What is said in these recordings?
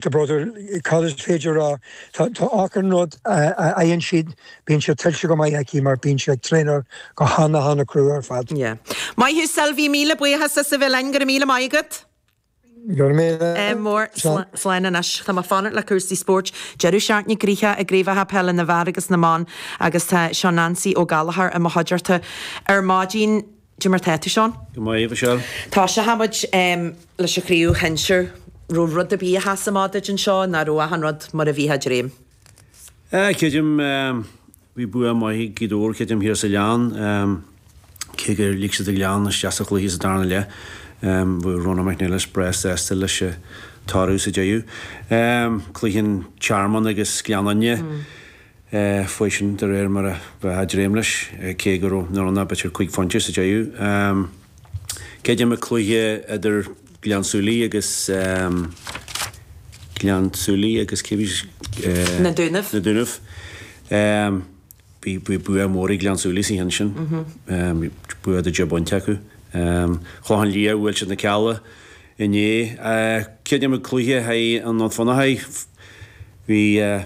The brother, Cad is féidir a rá? Tá, tá achan rud a, a fhaigheann siad, bíonn sé tuillte go maith aici mar bíonn sí ag traenáil go hana, hana crua ar fad. Yeah. Maith thú Sylvie, míle buíochas as a bheith linn, go raibh míle maith agat! Go raibh míle maith, slán. Slán anois, tá mé ag fanacht le cúrsaí spóirt. Deireadh seachtaine gnoitheach i gCraobhacha Peile na bhFear agus na mBan agus tá Seán Nancy Ó Gallchóir i mo chuideachta ar maidin. Cad é mar tá tú, Seán. Go maith, a Mhichelle. Tosóidh muid leis an chraobh shinsir. raibh rud ar bith a sheas amach duit anseo, nó an raibh achan rud mar a bheifí ag dréim. Eh, creidim, bhí bua maith ag Gaoth Dobhair, creidim, thiar sa Ghleann, cé gur lig siad an Gleann isteach sa chluiche sa darna leath, bheadh Rónán Mac Niallais breá sásta leis an toradh sa deireadh. Cluiche an Tearmainn agus Gleann Fhinne. chuaigh sin, de réir mar a bheifeá ag dréim leis, cé go raibh nach raibh ann ach b'fhéidir cúig phointe sa deireadh. Creidim an cluiche idir Gleann tSúilí agus Gleann tSúilí agus cé a bhí sa. Na Dúnaibh. Na Dúnaibh. Bhí bua mór ag Gleann tSúilí sa cheann sin, bua de dheich bpointe acu. Clochán Liath, Bhuail siad na Cealla, Inné, creidim, an cluiche thíos i nDún Fionnachaidh, bhí,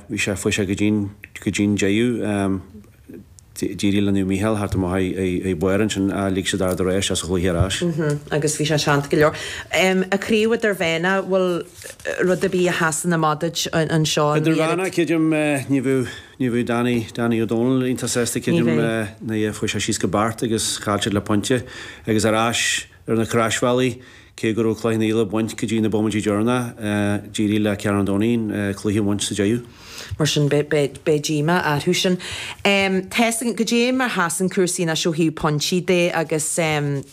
bhí sé, chuaigh sé go dtí'n, go dtí'n deireadh, d'éirigh le Naomh Mícheál teacht amach ag, ag, ar barr ansin ach lig siad Ard a' Rátha isteach sa chluiche ar ais. Mhm, agus bhí sé teannta go leor. Em, an Chraobh Idirmheánach, bhfuil rud ar bith a sheasann amach duit anseo a Sheáin? Idirmheánach, creidim, ní bheadh, ní bheadh Danny, Danny Ó Dónaill iontach sásta, creidim, eh, ní bheadh, chuaigh siad síos go Beart agus chaill siad le pointe agus ar ais, ar na Croisbhealaí, cé go raibh Cloich Cheann Fhaola ag baint go dtí na bómaití deireanacha, d'éirigh le Carn Domhnach an cluiche a bhaint sa deireadh. Mar sin, beidh díomá orthu sin. Seasann, cad é mar sheasann cúrsaí anois ó thaobh pointí de agus an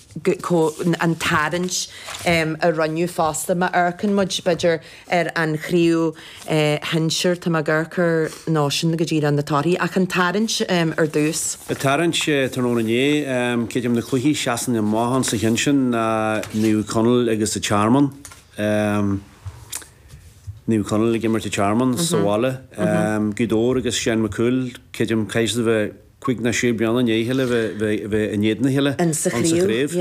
tarraingt a rinneadh fosta, má amharcann muid, b'fhéidir, ar an chraobh shinsir, tá mé ag amharc ar nós sin go dtí le na torthaí, ach an tarraingt ar dtús. An tarraingt tráthnóna inné, creidim, na cluichí a sheasann amach sa cheann sin ná Naomh Conaill agus an Tearmann, Naomh Conaill ag imirt an Tearmann sa bhaile, Gaoth Dobhair agus Seán Mac Cumhaill, creidim, caithfidh siad a bheith cúig nó sé bliana i ndiaidh a chéile bheith in éadan a chéile sa chraobh.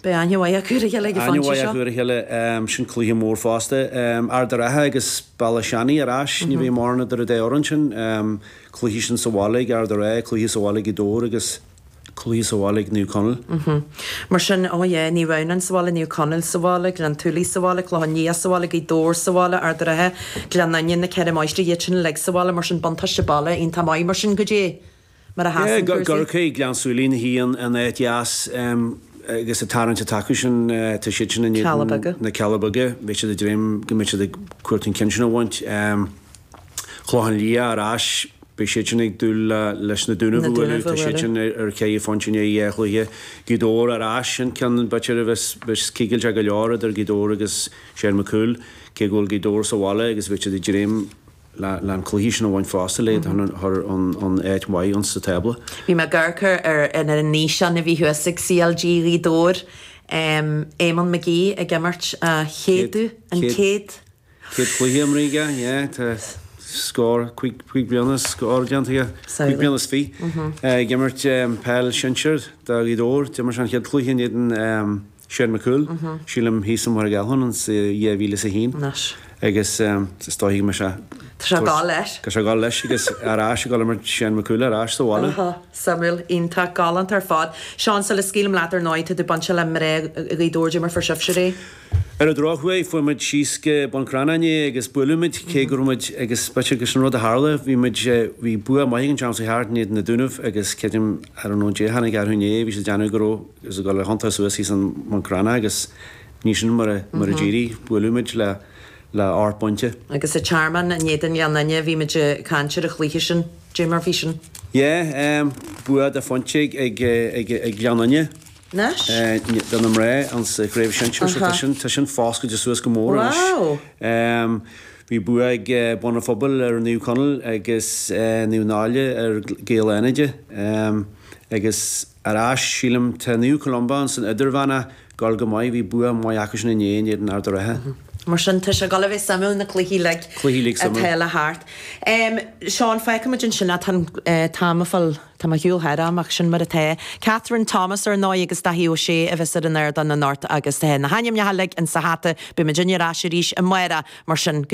Beidh aithne mhaith acu ar a chéile ag an phointe seo. Aithne mhaith acu ar a chéile, sin cluiche mór fosta. Ard a' Rátha agus Béal Átha Seanaidh ar ais, ní bheidh mórán idir an dá fhoireann sin. Cluiche sin sa bhaile ag Ard a' Rátha, cluiche sa bhaile ag Gaoth Dobhair agus cluiche sa bhaile ag Naomh Conaill. Mar sin, oh yeah, Naomh Adhamhnáin sa bhaile, Naomh Conaill sa bhaile, Gleann tSúilí sa bhaile, Clochán Liath sa bhaile, Gaoth Dobhair sa bhaile, Ard a' Rátha, Gleann Fhinne, na Ceithre Máistrí, iad sin uilig sa bhaile, mar sin, buntáiste baile, iontach maith, mar sin, caidé mar a sheasann cúrsaí. Ag amharc ar Ghleann tSúilí, na hAon, in áit dheas agus an tarraingt atá acu sin, tá siad sin in éadan na Cealla Beaga, beidh siad ag dréim go mbeidh siad ag cuartú an ceann sin a bhaint. Clochán Liath ar ais, beidh siadsan ag dúil leis na Dúnaibh a bhualadh, tá siadsan ar cheithre phointe i ndiaidh dhá chluiche. Gaoth Dobhair ar ais, an ceann b'fhéidir a bheas cigilteach go leor idir Gaoth Dobhair agus Seán Mac Cumhaill, cé go bhfuil Gaoth Dobhair sa bhaile agus beidh siad ag dréim le an cluiche sin a bhaint fosta le iad a chur in áit mhaith insa tábla. Bhí mé ag amharc ar an fhíseán a bhí thuas ag CLG Ghaoth Dobhair, Eamonn McGee ag imirt a chéad, an chéad? Céad cluiche imrithe aige, yeah, tá scór, cúig, cúig bliana is scór déanta aige, cúig bliana is fiche, ag imirt peil sinsir do Ghaoth Dobhair. D'imir sé an chéad cluiche in éadan Seán Mac Cumhaill, sílim thíos i Machaire Gathlán sa 2001. Nice. Agus is dóigh go mbeidh sé, Tá sé ag dul leis. tá sé ag dul leis agus ar ais ag dul a imirt Seán Mac Cumhaill ar ais sa bhaile. Aha, suimiúil, iontach, galánta ar fad. Seán, sula scaoilim leat, ar ndóigh, tá tú bainte le mná Ghaoth Dobhair, dé mar fuair sibhse ar aghaidh? Ar an drochuair, chuaigh muid síos go Bun Cranncha inné agus buaileadh muid, cé go raibh muid ag spite agus an rud a tharla, bhí muid, bhí bua maith againn an tseachtain seo chuaigh thart in éadan na Dúnaibh agus creidim, I don't know, Dé a tháinig orthu inné, bhí siad ag déanamh go raibh, agus ag dul a thiontú suas thíos i mBun Cranncha agus ní sin mar a, mar a d'éirigh, buaileadh muid le, le ocht bpointe. Agus an Tearmann, in éadan Ghleann Fhinne, bhí muid ag caint ar an chluiche sin, Dé mar bhí sin? Yeah, bua dá phointe ag, ag, ag, ag Gleann Fhinne. Anois? de na mná insa chraobh shinsir so tá sin, tá sin foscailte suas go mór anois. Bhí bua ag Bun a' Phobail ar Naomh Conaill agus Naomh Náille ar Gaeil Fhánada agus ar ais sílim tá Naomh Columba insan idirmheán a' gabháil go maith, bhí bua maith acu sin inné in éadan Ard a' Rátha. Mar sin tá sé ag dul a bheith suimiúil na cluichí uilig atá le theacht. Seán, feicfidh muid ansin a' t-am a fuil. Tá mé ar shiúl thar am, ach sin mar atá. Kathryn Thomas, ar ndóigh, agus Dáithí Ó Sé a bheas ar an ardán anocht agus na hainmneacha uilig insa hata, beimid uilig ar ais arís amárach, mar sin, go